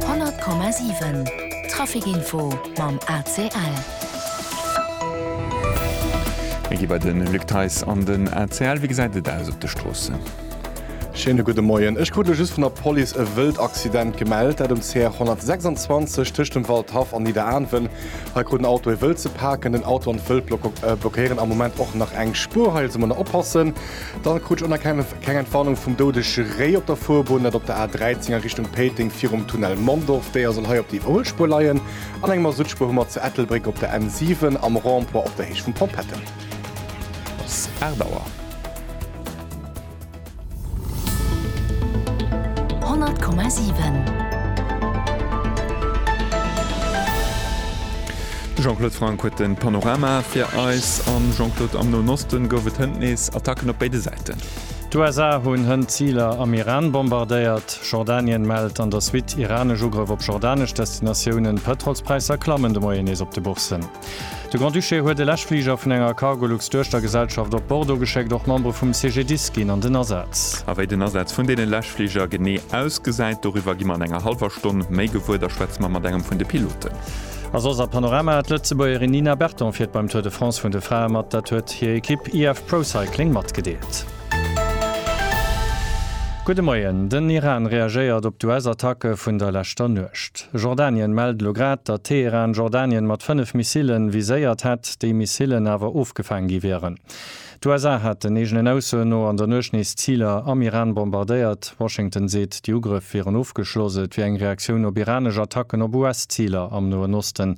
100,7 Trafic Info mam ACL. Mir gi bei de Luc Theis an den ACL. Wéi gesäit et aus op de Stroossen? Schéine gudde Moien. Ech krut elo just vun der Police e wëllt Accident gemellt, dat um CR 126 tëscht dem Waldhaff an Nidderaanwen. Hei krut en Auto e Wëld ze paken. Den Auto an d'Wëld blockéieren am Moment och nach eng Spuer. Hei also mol nach oppassen. Dann krut ech onerkennlech. Keng Entwarnung vum doudege Réi op der Fuerbunn, dat op der A 13 a Richtung Péiteng virum Tunnel Mondorf. D'Déier soll hei op déi oul Spuer leien. An eng Masuttspuer hu mer zu Ettelbréck op der N 7 am Rond-point op der Héicht vum Pompette. Ass 8 Auer. 100,7. De Jean-Claude Franck huet den Panorama fir eis. An Jean-Claude, am Noen Osten gouf et hënt nees Attacken op béide Säiten. Ägypten. D'USA hunn hënt Ziler am Iran bombardéiert. Jordanien mellt an der Suite iranesch Ugrëff op jordanesch Destinatiounen. D'Pëtrolspräisser klammen de Moien nees op de Bourssen. De Grand-Duché huet e Läschfliger vun enger Cargolux-Duechtergesellschaft op Bordeaux geschéckt. Och Membere vum CGDIS ginn an den Asaz. A wéi den Asaz vun deene Läschfliger genee ausgesäit, doriwwer gi mer an enger hallwer Stonn méi gewuer. Da schwätze mer mat engem vun de Piloten. A soss a Panorama, D'Lëtzebuergerin Nina Berton fiert beim Tour de France vun de Frae mat, dat huet hir Ekipp IF Pro Cycling matgedeelt. Gudde Moien, Den Iran reagéiert op d'US-Attacke vun der leschter Nuecht. Jordanien mellt elo grad, datt Teheran Jordanien mat 5 Missilen viséiert hätt, déi Missilen awer ofgefaang gi wieren. D'USA hätten, eegenen Aussoen no, an der Nuecht nees Ziler am Iran bombardéiert. Washington seet, déi Ugrëff wieren ofgeschloss. Et wier eng Reaktioun op iranesch Attacken op US-Ziler am Noen Osten.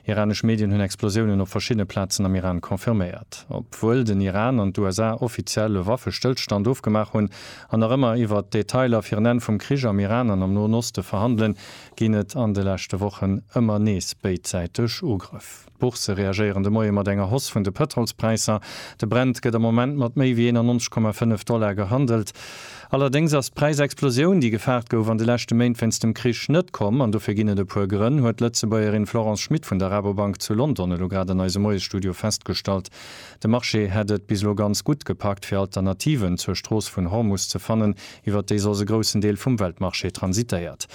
Iranesch Medien hunn Explosiounen op verschiddene Plazen am Iran confirméiert. Obwuel den Iran an d'USA offiziell e Waffestëllstand ofgemaach hunn an nach ëmmer iwwert d'Detailer fir en Enn vum Krich am Iran an am Noen Oste verhandelen, ginn et an de leschte Wochen ëmmer nees béidsäiteg Ugrëff. D'Boursë reagéieren de Moie mat enger Hoss vun de Pëtrolspräisser. De Brent gëtt am Moment mat méi wéi 91,5 Dollar gehandelt. Allerdéngs ass d'Präisexplosioun, déi gefaart gouf, an de leschte Méint wéinst dem Krich net komm. An dofir ginn et e puer Grënn, huet d'Lëtzebuergerin Florence Schmit vun der Rabobank zu London elo grad an eisem Moiesstudio festgestallt. De Marché hätt et bis elo ganz gutt gepackt, fir Alternativen zur Strooss vun Hormus ze fannen, iwwert déi soss e groussen Deel vum Weltmarché transitéiert.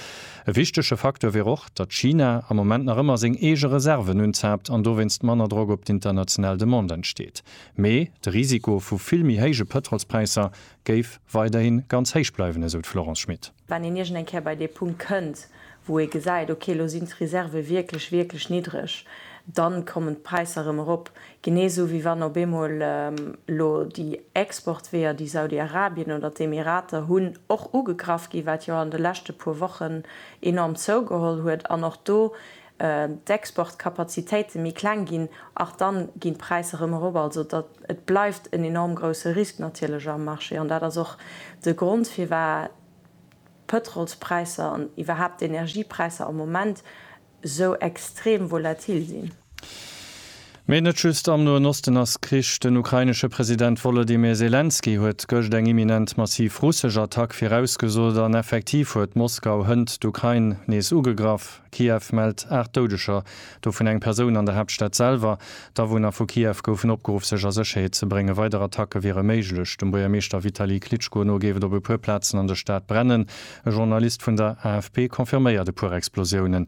E wichtege Facteur wier och, datt China am Moment nach ëmmer seng eege Reserven unzaapt an dowéinst manner Drock op d'international Demande entsteet. Mee de Risiko vu vill méi héije Pëtrolspräisser géif weiderhi ganz héich bleiwen, esou d'Florence Schmit. Wann een iergend eng Kéier bei dee Punkt kënnt, wou ee gesäit, ok, elo sinn d'Reserve wierklech, wierklech niddreg, da kommen d'Präisser erëm erop. Genee esou wéi wann op eemol elo déi Exportweeër, déi Saudi-Arabien oder d'Emirater hunn, och ugegraff ginn, wat jo an de leschte puer Wochen enorm zougeholl huet an och do d'Exportkapazitéite méi kleng ginn, ach dann ginn d'Präisser erëm erop. Also et bleift en enorm grousse Risk natierlech am Marché an dat ass och de Grond firwat d'Pëtrolspräisser an iwwerhaapt d'Energiepräisser am Moment esou extrem volatil sinn. Mee net just am Noen Osten ass Krich. Den ukrainesche President Wolodymyr Selenskyj huet gëscht eng imminent massiv russesch Attack virausgesot an effektiv huet Moskau hënt d'Ukrain nees ugegraff. Kiew mellt 8 Doudeger, dovun eng Persoun an der Haaptstad selwer. D'Awunner vu Kiew goufen opgeruff sech a Sécherheet ze bréngen. Weider Attacke wiere méiglech. Dem Buergermeeschter Vitali Klitschko no géif et op e puer Plazen an der Stad brennen. E Journalist vun der AFP confirméiert e puer Explosiounen.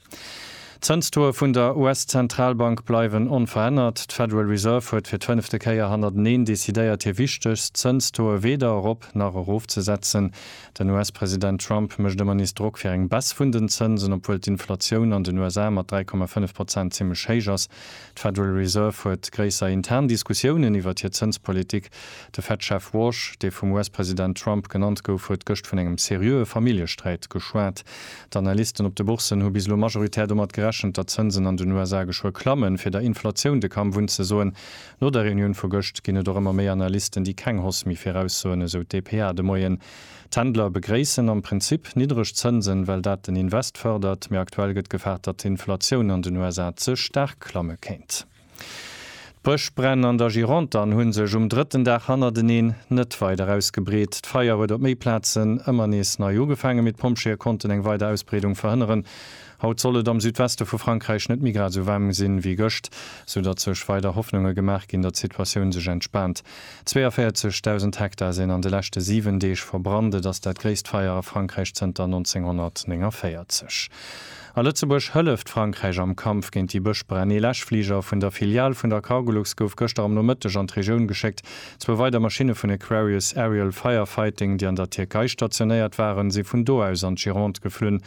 D'Zënstauxe vun der US-Zentralbank bleiwen onverännert. D'Federal Reserve huet fir d'fënnefte Kéier hannerteneen decidéiert, hir wichtegst Zënstauxe weder erop nach erofzesetzen. Den US-President Trump mécht ëmmer nees Drock fir eng Baisse vun den Zënsen. Obwuel d'Inflatioun an den USA mat 3,5 Prozent zimmlech héich ass, d'Federal Reserve huet gréisser intern Diskussiounen iwwert hir Zënspolitik. De Fed-Chef Warsh, dee vum US-President Trump genannt gouf, huet gëscht vun engem seriöe Familljesträit geschwat. D'Analysten op de Bourssen hu bis elo majoritär domat gerechent, datt d'Zënsen an den USA geschwë klammen, fir der Inflatioun de Kamm wunn ze soen. No der Reunioun vu gëscht ginn et och ëmmer méi Analysten, déi keng Hoss méi viraussoen, esou d'DPA de Moien. D'Händler begréissen am Prinzip niddreg Zënsen, well dat den Invest fërdert, mee aktuell gëtt gefaart, datt d'Inflatioun an den USA ze staark klamme kéint. D'Bëschbränn an der Gironde an hunn sech um drëtten Dag hannerteneen net weider ausgebreet. D'Feier huet op méi Plazen ëmmer nees nei ugefaangen, mee d'Pompjeeë konnten eng weider Ausbreedung verhënneren. Haut soll et am Südweste vu Frankräich net méi grad esou waarm sinn, wéi gëscht, sou datt sech weider Hoffnunge gemaach ginn, datt d'Situatioun sech entspaant. 42.000 Hektar sinn an de leschte 7 Deeg verbrannt. Et ass dat gréisst Feier a Frankräich zënter 1949. A Lëtzebuerg hëlleft Frankräich am Kampf géint déi Bëschbränn. Ee Läschfliger vun der Filial vun der Cargolux gouf gëschter am Nomëtteg an d'Regioun geschéckt. Zwou weider Maschinne vun Aquarius Aerial Firefighting, déi an der Tierkei stationéiert waren, si vun do aus an d'Gironde geflunn.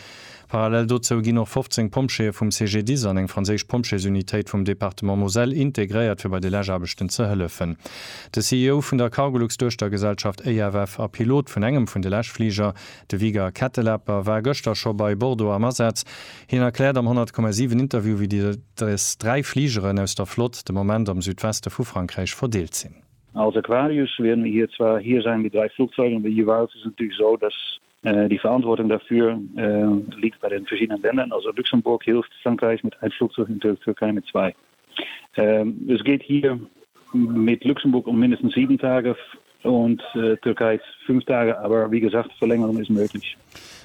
Parallel dozou ginn och 15 Pompjeeë vum CGDIS an eng franséisch Pompjeesunitéit vum Departement Moselle integréiert, fir bei de Läschaarbechten ze hëllefen. De CEO vun der Cargolux-Duechtergesellschaft EFF a Pilot vun engem vun de Läschfliger, De Vigar Kettelapper war gëschter scho bei Bordeaux am Asaz. Hien erkläert am 100,7 Interview, wéi déi des dräi Fligeren aus der Flott de Moment am Südweste vu Frankräich verdeelt sinn. Als Aquarius wier mir hier zwar, hier seien die drei Flugzeuge, aber jeweils ist es natürlich so, dass die Verantwortung dafür liegt bei den verschiedenen Ländern, also Luxemburg hilft Frankreich mit ein Flugzeug und der Türkei mit zwei. Ähm, es geht hier mit Luxemburg um mindestens sieben Tage und äh, Türkei fünf Tage, aber wie gesagt, Verlängerung ist möglich.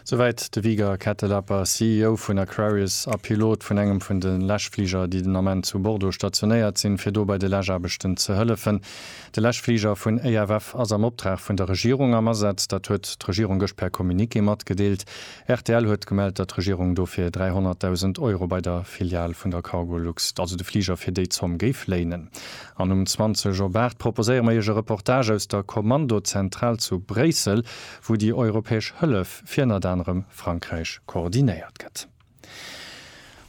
Soweit de Viger Kettelapper, CEO vun Aquarius a Pilot vun engem vun de Läschfliger, déi den Ament zu Bordeaux stationéiert sinn, fir do bei de Läschaarbechten ze hëllefen. De Läschfliger vun EFF ass am Optrag vun der Regierung am Asaz. Dat huet d'Regierung gëscht per Communiqué matgedeelt. Rtl huet gemellt, datt d'Regierung dofir 300.000 Euro bei der Filial vun der Cargolux, also de Fliger fir déi Zomm, géif léinen. An um 20 op 8 proposéiere mer Iech e Reportage aus der Kommandozentral zu Bréissel, wou déi europäesch Hëllef fir ënnert anerem Frankräich koordinéiert gëtt.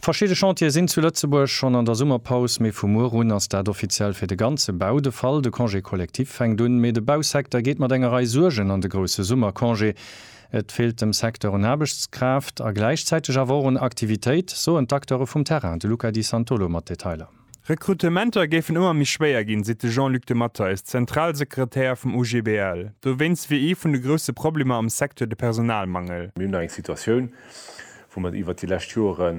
Verschidde Chantiere sinn zu Lëtzebuerg schonn an der Summerpaus, mee vu muer un ass dat offiziell fir de ganze Bau de Fall. De Congé collectif fänkt un, mee de Bausecteur geet mat enger Rei Suergen an de grousse Summercongé. Et feelt dem Secteur un Aarbechtskraaft a gläichzäiteg awer och un Aktivitéit, soen d'Acteure vum Terrain. De Luca Di Santolo mat Detailer. Rekrutementer géifen ëmmer méi schwéier ginn, seet de Jean-Luc de Matteis, Zentralsekretär vum OGBL. Dowéinst wier ee vun de grousse Problemer am Secteur de Personalmangel. Mir hunn eng Situatioun, wou mer iwwert déi lescht Jore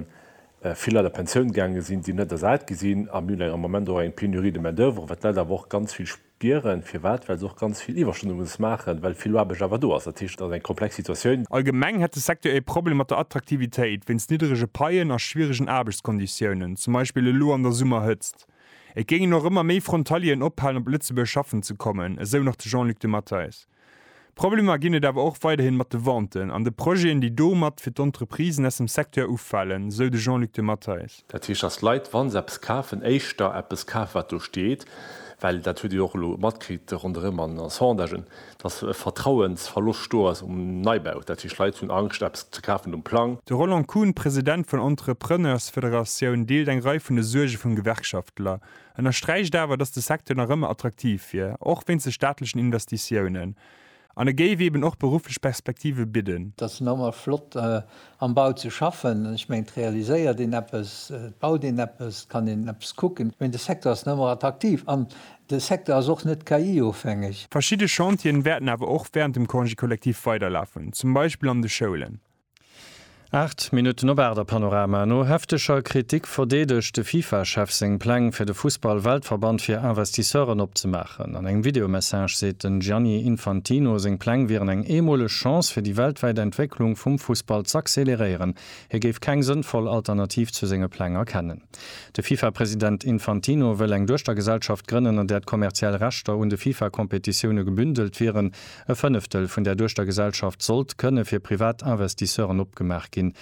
vill Leit a Pensioun gaange sinn, déi net ersat gi sinn. A mir hunn eng am Moment och eng Pénurie de main-d'oeuvre, wat d'Leit awer och ganz vill. Gieren, firwat? Well se och ganz vill Iwwerstunden muss maachen, well vill Aarbecht awer do ass. Dat heescht, et ass eng komplex Situatioun. Allgemeng hätt de Secteur ee Problem mat der Attraktivitéit wéinst nidderege Paien a schwieregen Aarbechtskonditiounen, zum Beispill elo an der Summerhëtzt. Et géingen och ëmmer méi Frontalieren ophalen, op Lëtzebuerg schaffen ze kommen, esou nach de Jean-Luc de Matteis. Problemer ginn et awer och weiderhin mat de Venten an de Projeten, déi domat fir d'Entreprisen aus dem Secteur ufalen, esou de Jean-Luc de Matteis. Dat heescht, datt d'Leit, wa se eppes kafen, éischter eppes kafen, wat do steet, well, dat hutt Dir jo och elo matkritt ronderëm an den Sondagen, datt e Vertrauensverloscht do ass um Neibau. Dat heescht, d'Leit hunn Angscht, eppes ze kafen um Plang. De Roland Kuhn, President vun Entrepreneursfederatioun, deelt eng Rei vun de Suerge vum Gewerkschaftler. ënnersträicht awer, datt de Secteur nach ëmmer attraktiv wier, och wéinst de staatlechen Investitiounen, an e géif eeben och berufflech Perspektive bidden. Et ass normal flott am Bau ze schaffen, ech mengen et realiséiert een eppes, et baut een eppes, et kann een eppes kucken, mee de Secteur ass nach ëmmer attraktiv an de Secteur ass och net KI-ofhängeg. Verschidde Chantieren wäerten awer och während dem Congé collectif weiderlafen, zum Beispill an de Schoulen. Aacht Minutten op aacht a Panorama. No hefteger Kritik verdeedegt de FIFA-Chef seng Pläng fir de Fussball-Weltverband fir Investisseuren opzemaachen. An engem Videomessage seet den Gianni Infantino, seng Pläng wieren eng eemoleg Chance fir déi weltwäit Entwécklung vum Fussball z'acceleréieren. Hie géif keng sënnvoll Alternativ zu senge Pläng erkennen. De FIFA-President Infantino wëll eng Duechtergesellschaft grënnen, an där d'kommerziell Rechter un de FIFA-Kompetitioune gebündelt wieren. E Fënneftel vun där Duechtergesellschaft sollt kënne fir privat Investisseuren opgemaach ginn.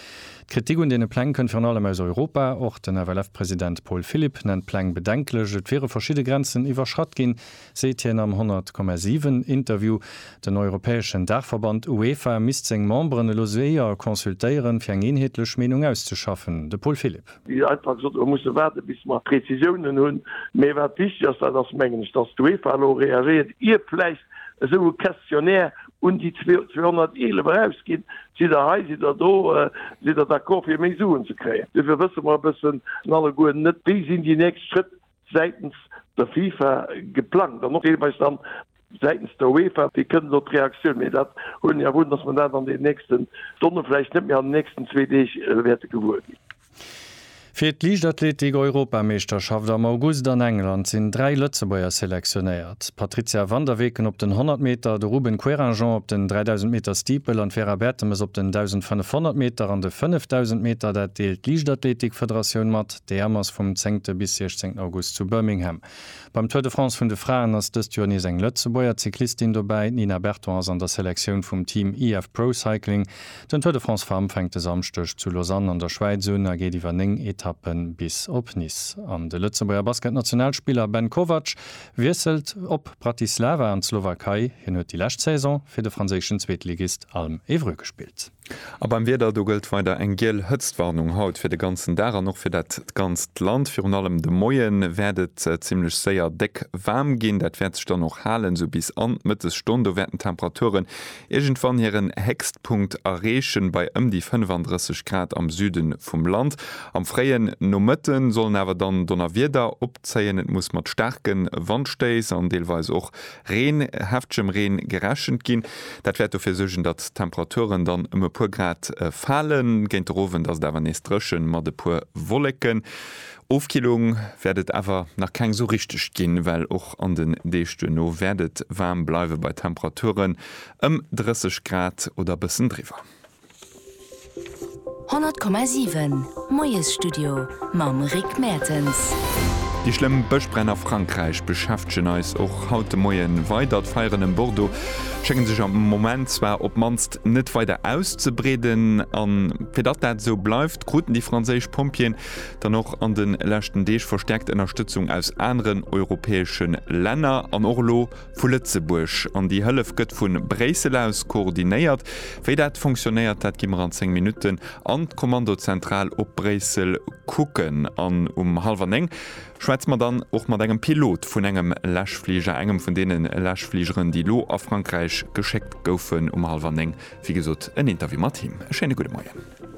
D'Kritik un deene Pläng kënnt virun allem aus Europa. Och den FLF-President Paul Philipp nennt d'Pläng bedenklech. Et wiere verschidde Grenzen iwwerschratt ginn, seet hien am 100,7 Interview. Den europäeschen Daachverband UEFA misst seng Memberen elo séier consultéieren, fir eng eenheetlech Meenung auszeschaffen. De Paul Philipp. Wéi einfach gesot, mer musse waarden, bis mer Prezisiounen hunn. Mee wat wichteg ass, dat ass, mengen ech, datt d'UEFA elo reagéiert, ier vläicht Lëtzebuerg esou e Questionnaire un déi 211 erausginn, sidd Der hei, sidd Der do, sidd Der d'accord fir méi Suen ze kréien? Dofir wësse mer e bëssen alleguer net, wéi sinn déi nächst Schrëtt säitens der FIFA geplangt an och deelweis dann säitens der UEFA, wéi kënnt elo d'Reaktioun? Mee dat huelen ech awer un, datt mer dat an deenen nächsten Stonne, vläicht net méi an den nächsten zwee Deeg, wäerte gewuer ginn. Fir d'Liichtathletik-Europameeschterschaft am August an England sinn dräi Lëtzebuerger selektionéiert. D'Patrizia van der Weken op den 100 Meter, de Ruben Querinjean op den 3000 Meter Steeple an d'Vera Bertemes op den 1500 Meter an de 5000 Meter. Dat deelt d'Liichtathletik-Federatioun mat. D'EM ass vum zéngte bis 16 August zu Birmingham. Beim Tour de France vun de Fraen ass dëst Joer nees eng Lëtzebuerger Cyclistin dobäi. D'Nina Berton ass an der Selektioun vum Team IF Pro Cycling. Den Tour de France Femmes fänkt e Samschdeg zu Lausanne an der Schwäiz un a geet iwwer 9 Etappen bis op Nice. An de Lëtzebuerger Basket-Nationalspiller Ben Kovac wiesselt op Bratislava an d'Slowakei. Hien huet déi lescht Saison fir de franséischen Zweetligist Alm Évreux gespillt. A beim Wieder, do gëllt weider eng giel Hëtztwarnung haut fir de ganzen Dag an och fir dat ganzt Land. Virun allem de Moie wäert et zimmlech séier déck waarm ginn. Dat wäert sech dann och halen, esou bis an d'Mëttesstonn. Do wäerten d'Temperaturen iergendwann hiren Héchstpunkt erreechen, bei ëm déi 35 Grad am Süde vum Land. Am fréien Nomëtte sollen awer dann Donnerwieder opzéien, et muss mat staarke Wandstéiss an deelweis och Reen, heftgem Reen gerechent ginn. Dat wäert dofir suergen, datt d'Temperaturen dann ëm e puer Grad falen. Géint de Rowend ass et awer nees drëchen mat e puer Wolleken. Ofkillung wäert et awer nach keng sou richteg ginn, well och an den Deeg duerno wäert et waarm bleiwe bei Temperaturen ëm 30 Grad oder e bëssen driwwer. 100,7 Moiesstudio mam Rick Mertens. Déi schlëmm Bëschbränn a Frankräich beschäftegen eis och haut de Moie weider. D'Feieren ëm Bordeaux schénge sech am Moment zwar op d'mannst net weider auszebreeden. A fir datt dat esou bleift, kruten déi franséisch Pompjeeën dann och an de leschten Deeg verstäerkt Ënnerstëtzung aus aneren europäesche Länner. An och elo Vu Lëtzebuerg. An déi Hëllef gëtt vu Bréissel aus koordinéiert. Wéi dat funktionéiert, dat gi mer an 10 Minutten an d'Kommandozentral op Bréissel kucken. An um hallwer 9 schwätze mer dann och mat engem Pilot vun engem Läschfliger, engem vun deene Läschfligeren, déi elo a Frankräich geschéckt goufen. Um hallwer 9, wéi gesot, en Interview mat him. E schéine gudde Moien.